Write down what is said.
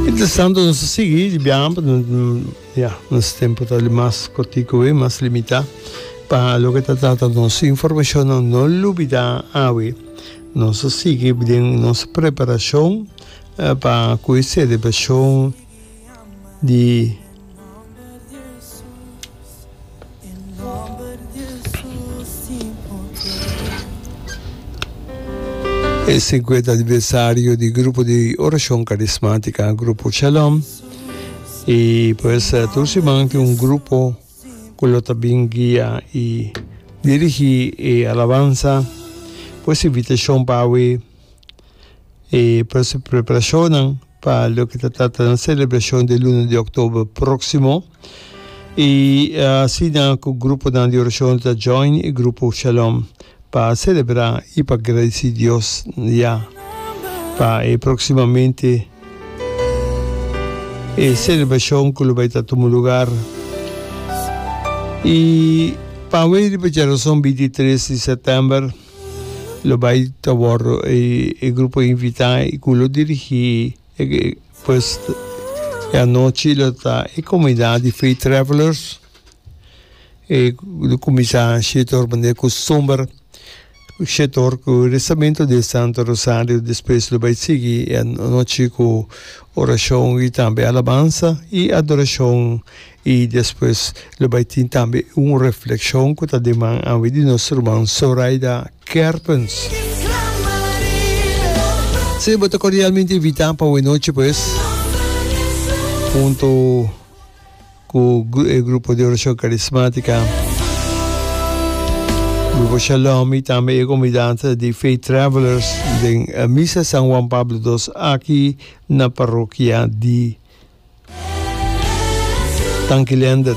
Interesante nos ta sigui di biaha pa ya nos tempo ta di mas cortico we mas limita pa lo que ta trata nos informacion no no lubida awe nos ta sigui den nos preparacion pa cu e celebracion di e cincuenta aniversario di grupo di oracion carismática grupo Shalom y pues tur siman tin un grupo cu lo ta bin guia y dirigi e alabanza pues invitacion pa awe E preparashonnan pa loke ta trata na selebrashon di luna di oktober próksimo. I asina ku gruponan di orashon ta join e grupo Shalom pa selebrá i pa gradisí Dios ya pa e próksimamente e selebrashon ku lo bai ta tuma lugar. I pa awor riba djaroson bintitres di sètèmber. Lo bai ta wordo e grupo invita y cu lo dirigi e pues e anochi lo ta e comunidad di Faith Travelers e lo cuminsa shetor manera costumber shetor cu rezamento di e Santo Rosario despues lo bai sigui e anochi cu oracion y tambe alabansa y adoracion I despues lo bai tin tambe un reflekshon ku ta deman awe di nos ruman Soraida Kerpens. Si bo ta kordialmente invitá pa Wenochi pues, hunto ku e grupo di orashon karismátika, grupo Shalom i tambe e komunidat di Faith Travelers den Misa San Juan Pablo dos aki. na parokia di Tanki Leander.